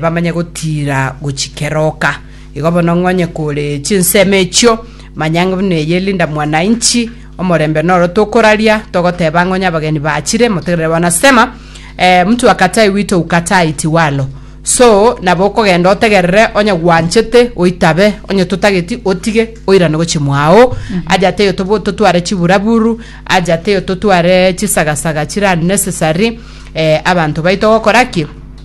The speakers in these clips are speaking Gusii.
bamanye gotiira gochia keroka. Igo bono ng'onye kore chinsemo echio, manya ng'a buna eye Linda Mwananchi, omorembe noro tokoraria, togoteba ng'onye abageni bachire, motegerere wanasema eh, mtu akatai wito ukatai tiwalo. So, nabo okogenda otegerere onye gwanchete oitabe, onye totageti otige, oirane gochia mwao, aja teyo tobo- totware chiburaburu, aja teyo totware chisagasaga chire unnecessary, eh, abanto baito gokora ki?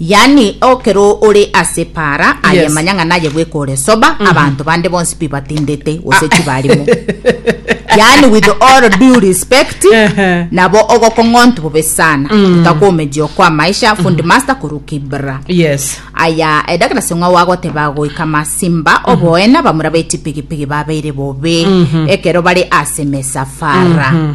Yaani, ekero ore ase para aye Yes. manya ng'a naye bweka ore sober, abanto bande bonsi pi batindete gose chi barimo. Yaani with all due respect, Ehe. nabo ogokong'ontu bobe sana. Otakomeji okwa maisha, fundi master kuru kibra. yes aya edagera seng'wa wagoteba goika masimba oboena bamura beti pigipigi babeire bobe ekero bare ase mesafara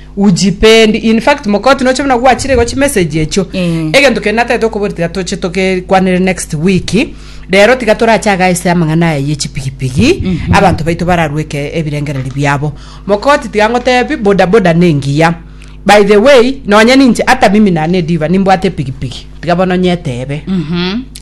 ujipendi in fact mokoti noche buna gwachire igo chimessage echio Mm. egento kende natete okobori tiga toche tokekwanere next week rero tiga torache aga ase amang'ana aya ye chipigipigi abanto baito bararweke ebirengereri biabo mokoti tiga ngotebi bodaboda nengiya by the way nonye ninche hata mimi nane diva nimbwate epigipigi tiga bono nyetebe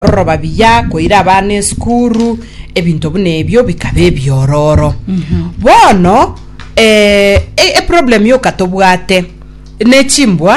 Roroba biya koira abana esukuru, ebinto buna ebio bikaba ebiororo. Bono eh, e- eproblem yoka tobwate nechimbwa